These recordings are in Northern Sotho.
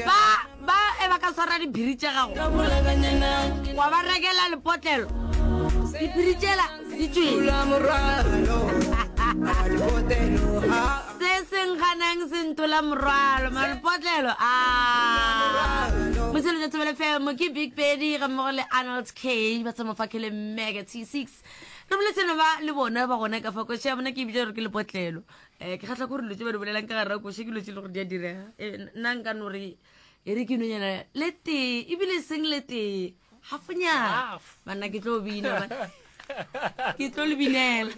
ba ba e ba ka swara diphiri tša gago wa ba rekela lepotlelo diphiri tšela di tswela se seng ganang se ntola morwalo malepotlelo a moseletsa tsebele femo ke big pedi ga mmogo le arnold k ba tsamofakele mega t six re boletseno ba le bona ba gona ka fakoša bona ke ebile gore ke lepotlelo um ke kgatlha gore dilo tse ba di bolelang ka gare koše ke dilo tse e le gore di a direga eh, nna nka no re e re ke nonyana le tee ebile e seng le tee gafonyana banna ke tlo bina ke tlo le binela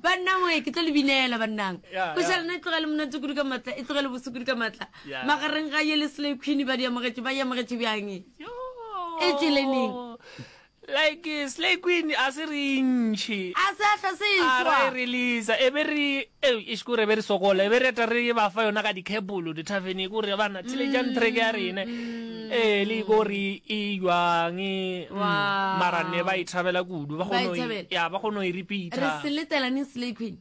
banna moe ke tlo le binela bannang ko sa lena e tlogele monate kudu ka matla e tlogele boso kudu ka matla magareng ga ye le sele queen ba di amogetše ba e amogetše bjang e tšeleneng Like Slay Queen a se re ntšhi. A se hle se A ra e-tšwa. releaser e be re ei eish kore be re sokola e be re eta re ba fa yona ka dikebolo dithaveneng kore bana theletšang track ya rena ee le kore e jwang e mm, Wow. mara ne ba e thabela kudu ba Ba e kgona go e- thabela. ya ba kgona go e Re repeater se letelaneng Slay Queen.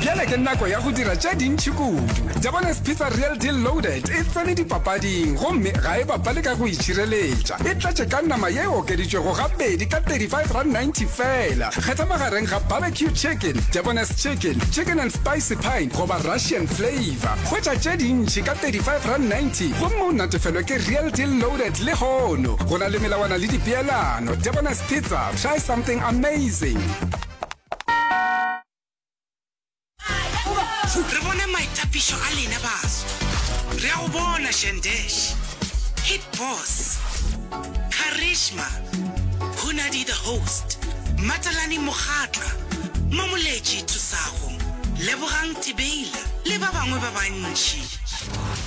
bjale ke nako ya go dira tše dintšhi kudu jabones pizza real deal loaded e tsene dipapading gomme ga e bapale ka go itšhireletša e tlatše ka nama ye e okeditšwego gabedi ka 35 rand 90 fela kgetha magareng ga barbecue chicken jabones chicken chicken and spicy pine goba russian flavor kgwetša tše dintšhi ka 35 rand 90 gomme o natefelwe ke real deal loaded le hono go na le melawana le dipeelano jabones pizza try something amazing re bone maitapišo a lena baso re a go bona shandesh hit boss charisma hunadi the host matalani mogatla mamoletši thusago lebogang tibeila le ba bangwe ba bantši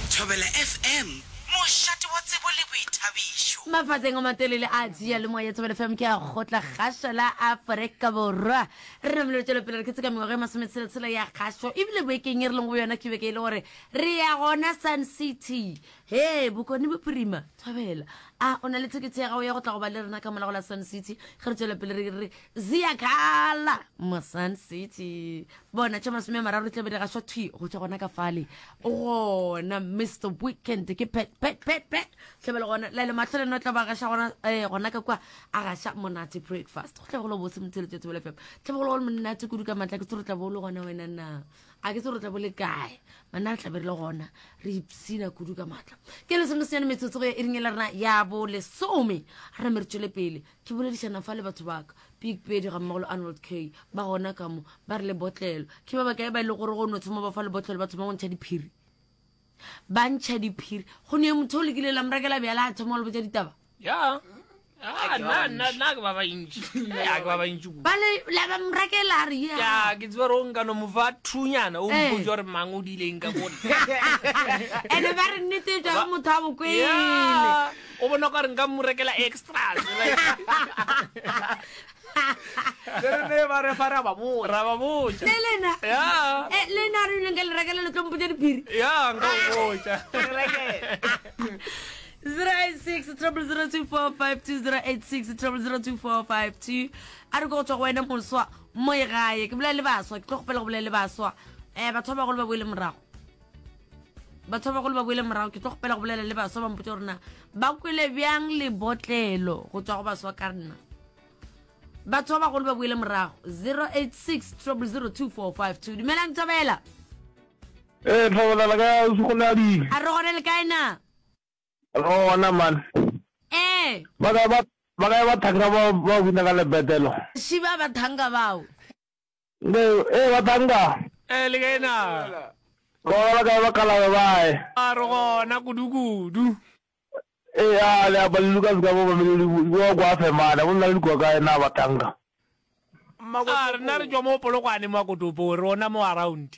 thobela fm Mošate wa tsebo le boithabišo. Mafatseng a matelele a Seyalemoya ya Thobela FM, ke a go tla gaša la Afrika Borwa. Re namile re tšwela pele re ketse ka mengwaga e masometshela-tshela ya kgašo, ebile boekeng e re leng go yona ke beke e le gore re ya gona Sun City. He, Bokone Bophirima, Thobela, a o na le thekethe ya gago ya go tla go ba le rena ka molago la Sun City? Ge re tšwela pele re re ziyakhala mo Sun City. Bona tša masome a mararo di tla be di gašwa thwi go tšwa gona ka fale gona mr weekend ke pet pet pet pet tlebele gona lele matlho le no tla ba gaša gona eh gona ka kwa a gaša monate breakfast go tlebegolo bose motshele tšatsi bele fela tlebegolo le monate kudu ka matla ke tsoro tla bo le gona wena na a ke tsoro tla bo le kae manna re tlabe re le gona re ipsina kudu ka matla ke le sengwe senyane metsotsogo ya e ringela rena ya bo lesome re me re tšwele pele Ke boledišana fa le batho baka, Big Pedi ga mmogo le Arnold Kay, ba gona ka mo, ba re lebotlelo. Ke ba bakae ba e le gore go no thoma ba fa lebotlelo ba thoma go ntšha diphiri? Ba ntšha diphiri. Go ne motho o lekile la morakela bjala a thoma go le botša ditaba? Ya. Ah, na na na ke ba ba intši. Ya ke ba ba intši ku. Ba le la ba morakela re ya. Ya ke tswa ro nka no mo fa thunyana o Eh. mpotsa gore mang o dileng ka bona. Ene ba re nnete e tšwa go motho a bokwele. Ya. O bona o ka re nka mo rekela extras. Le re ne ba re fa ra ba botsa. Ra ba botsa. Le lena. Ya. Eh le na re ile nka le rekela le tlo mpotsa diphiri. Ya nka o botsa. Re rekela. 086 002452 a re ko go tswa go wena moswa mo e gae ke bolela le baswa ke tlo kgopela go bolela le baswa um batho ba bagolo ba boele morago batho ba bagolo ba boele morago ke tlo gopela go bolela le baswa ba mpotse gorena ba kwele bjang lebotlelo go tswa go baswa ka nna batho ba bagolo ba boele morago 086 002452 dumelang thobela ee thobelala ka segoladi a re gone le kae na re gona man ee ba kae ba thanga ba bina ka lebetelo shiba ba thanga bao Nde, e ba tanga. E le gena. Go ba ka ba kala ba bae. A re gona kudu kudu. E a le a balilu ka zika bo ba mele di bo kwa fe mana bo nna le kwa ka ena ba tanga. A re na re jwa mo polokwane mwa kotopo rona mo around.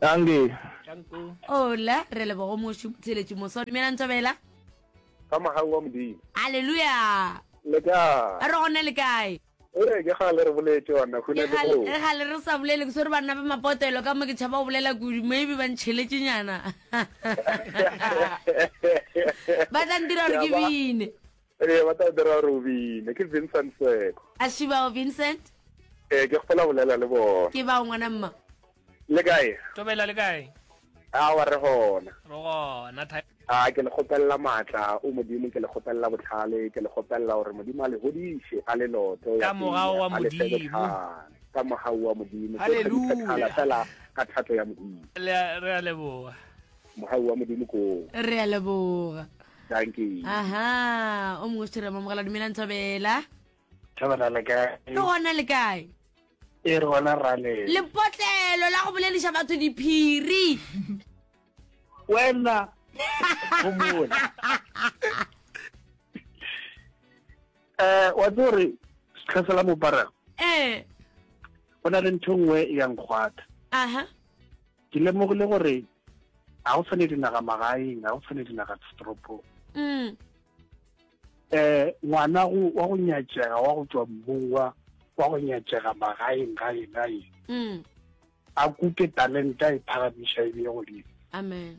Danke. Danko. Ola, re lebogo mošu tsheletši moso. Dumelang Tobela. Ka mahau wa modimo. Aleluya. Le kae? Re gona le kae? Ee, ke gale re boletše banna khuna ke go. Re gale re sa bolele ke swere banna ba mapotelo ka mo ke tšhaba go bolela kudu maybe ba ntšheletše nyana. Ba tla ntira gore ke bine. Ee, ba tla dira gore o bine. Ke Vincent Seko. A ši bao Vincent? Ee, ke kgopola bolela le bona. Ke bao ngwana mma. Le kae? Tobela le kae? A wa re gona. Re gona tha. A ke le kgopelela matla o Modimo, ke le kgopelela botlhale, ke le kgopelela gore Modimo a le hodiše a le loto ya Kamogao wa Modimo. Ka mogau wa Modimo. Haleluya. Fela ka thato ya Modimo. Le re a leboga. Mogau wa Modimo ko. Re a leboga. Dankie. Aha, o mongwe se re mamogela dumelang Thobela. Thobela le kae? Re gona le kae? E re gona rale. Lepotlelo la go boleliša batho diphiri. Wena. Gomola. Eh, wa tsore setlhasela mopara. Eh. Ona le ntho nngwe ya nkgwatha. Aha. ke lemogile gore ga go tshwane dinaga magaeng ga go tshwane dinaga ditoropong um ngwana wa go nyatšega wa go tswa mmung wa wa go nyatšega magaeng gae gae mm. a kuke talenta e phagamiša e beye godimo amen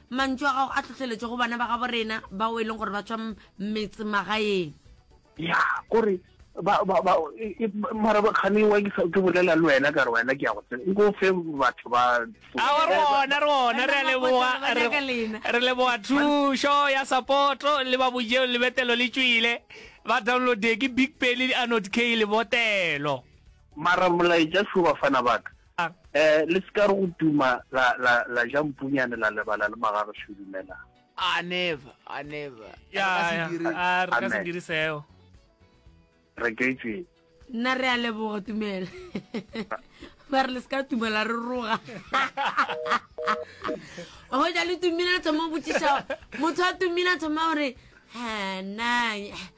Mantšu a gago a tlhohleletšo go bana ba gabo rena bao e leng gore ba tšwa metsemagaeng. Ya, kore ba ba ba e, e, mara ba khane wa ke sa ke bolela le wena ka re wena ke ya go tsena go fe batho ba a re ona re ona re le boa re le boa thusho ya support le ba bojeo le betelo le tšwile ba download ke big pele di anod k le botelo mara molaetša shuba fana baka A. Le se ka re go tuma la, la, la ja mpunyane la lebala le magagešo. Dumelang. A. Never, a never. Ya, ya, a re ka se dire seo. Re ka itseng. Nna re a leboga tumela. Ba re le se ka tuma la re roga. Go ja le tumile le thoma go botšiša motho a tumile a thoma gore ha nna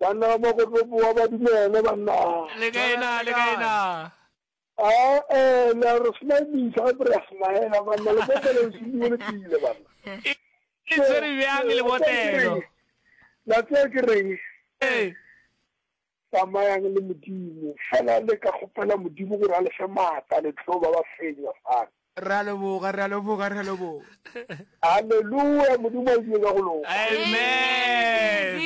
Banna ba mo go tlo boa ba dumele banna. Le kae na le kae na. Ah eh la re smile misa ga re smile banna le mo bele se bua le pile banna. Ke tsere bjang le botelo. La tsaya ke reng. Eh tsamayang le modimo fela le ka kgopela modimo gore a le fe maatla le tlo ba ba fenya fana Re a leboga, re a leboga, re a leboga. Hallelujah, Modimo a ile ka go loka. Amen.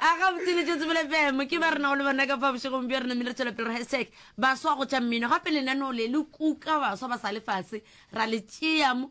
a ga botsile tšo tsebele fm ke ba rena go le bona ka fa bošegong bjo rena mme re tswelapele re hashtag baswa go tša mmino gape lenaneo le le kuka baswa ba sa lefase ra le tšeamo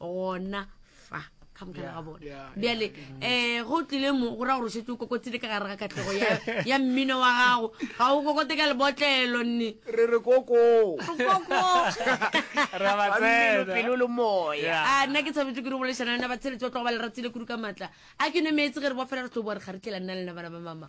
gona fa ka mokana ga bone bjale um eh, go tlile mo go ra gore o šetse o kokotsile ka gare ga katlego ya- ya mmino wa gago ga o kokote ka lebotlelo nne re re koko Ra ba Mmino, tsena. pelo le moya Yeah. a Ah, nna ke tshwanetse ke re bolešana lena batsheletsi ba tlogo ba le ratile kudu ka maatla a ke nwe meetse ge re bofela re tlo boa re kgaretlhela nna lena bana ba mama